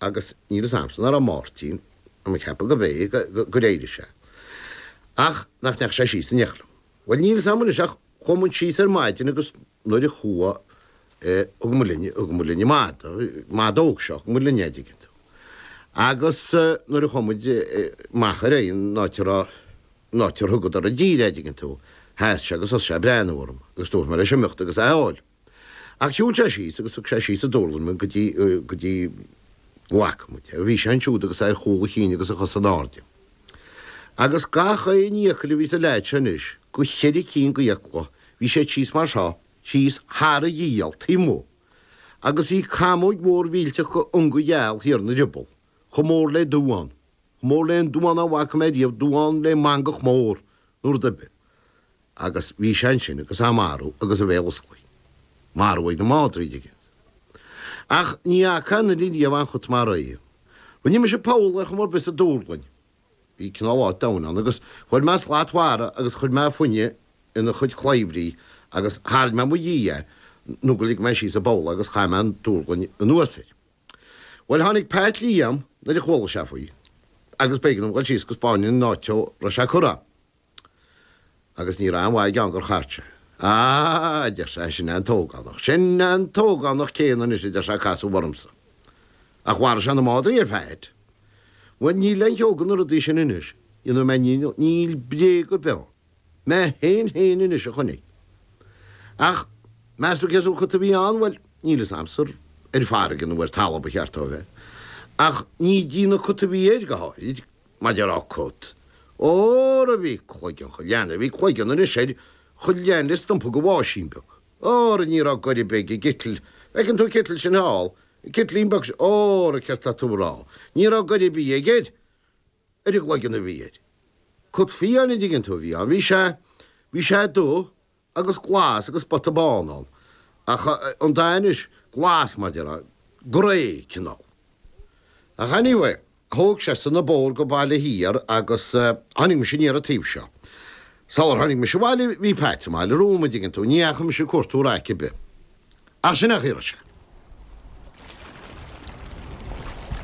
agus níl fhios a'msa nach raibh Máirtín tá mé ag ceapadh gob é gur éirigh sé ach nach ndeachaigh sé síos in éineacht liom. Bhuel níl fhios a'm anois ach chuaigh muid síos ar maidin agus nuair a chuaigh thug muid linn, thug muid linn an madadh óg seo, thug muid linn é an dtuigeann tú. Agus nuair a chuaigh muid amach ar an áit a raibh, an áit ar thugadar i dtír é dtuigeann tú, sheas sé agus thosaigh sé a' breathnú orm agus dúirt mé leis imeacht agus é a fháil. Ach shiúil sé síos agus thug sé síos an dúrlainn mé go dtí, go dtí, go bhfaca muid é. Bhí sé ansiúd agus é ar chúl a chinn agus a chosa in airde. Agus gach aon fhiacail a bhí sa leaid seo anois, go cheithre cinn go fhiacla, bhí siad síos mar seo, síos thar a ghiall, taobh amuigh. Agus bhí camóg mhór mhillteach go ionga gheal thiar ina rioball, chomh mór le duán, chomh mór le aon duán a bhfaca mé riamh, duán le mangach mór nó rud ar bith. agus bhí sé ansin agus é marbh agus a bhéal osclaithe. Marbh ag na madraí, an dtuigeann tú. Ach ní fhaca mé ariamh aon chut mar é. Rinne mise poll ar chuma ar bith sa dúrlainn. Bhí cineál áit domhain ann agus chuir mé slat mhara agus chuir mé fáinne ina chuid claibhrí agus tharraing mé i mo dhiaidh é nó gur lig mé síos sa bpoll é agus chaith mé an dúrlainn anuas air. Bhuel, tháinig Pat Liam nuair a chuala sé faoi agus b'éigean dom dhul síos go spáinfinn an áit a raibh sé curtha. Agus ní raibh aon mhaith aige ann gur chart sé é. Á, a deir sé, sin é an t-ógánach. Sin é an t-ógánach céanna anois, a deir sé, a casadh ormsa. Ach mharaigh sé na madraí ar fad. Bhuel, níl aon cheo go na rudaí sin anois, you know, mé, níl bréag ar bith ann. Mé féin féin anois a chonaic. Ach, meas tú cén sórt cut a bhí ann, bhuel, níl fhios a'msa, ar farraige nó ar talamh ba cheart dó a bheith. Ach ní déanamh cut a bhí air, go háirid, Maidir le cut, óra bhí cloigeann cho leathan, bhí cloigeann anois air cho leathan le stumpa de bháisín beag, óra ní rabh goir ar bith ag an gcitl, bhfeiceann tú an citl sin thall, an citlín beag sin, óra céard tá tú ag rádh, ní rabh goir ar bith aige air, ar an gcloigeann a bhí air. Cut fiáin a dtuigeann tú a bhí ann, bhí sé, bhí sé dubh, agus glas agus spota bán ann, ach an dath anois, glas mar a déarfá, grey cineál. Ach anyway, thóg seisean an bóthar go Baile Thiar agus tháinig mise aniar an taobh seo. Sular tháinig mise abhaile bhí Pat sa mbaile romham, an dtuigeann tú, ní dheachaigh mise ag cuartú raic ar bith. Ach sin a chíor sé.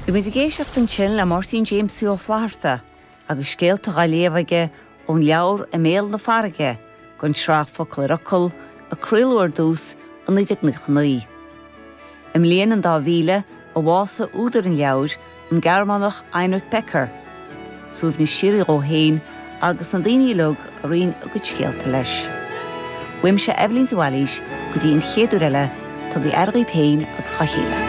Bhí muid ag éisteacht ansin le Máirtín Jamesie Ó Flaithearta agus scéalta dhá léamh aige ón leabhar I mBéal na Farraige don tsraith Focal ar Fhocal a craoladh ar dtús i 1999. I mbliain an dá mhíle, a bhásaigh údar an leabhair, an Gearmánach Heinrich Becker, suaimhneas síoraí dhó féin agus na daoine uilig a roinn a gcuid scéalta leis. Uaimse Eibhlín de Bhailís go dtí an chéad uair eile, tugaí aire dhaoib féin agus dhá chéile.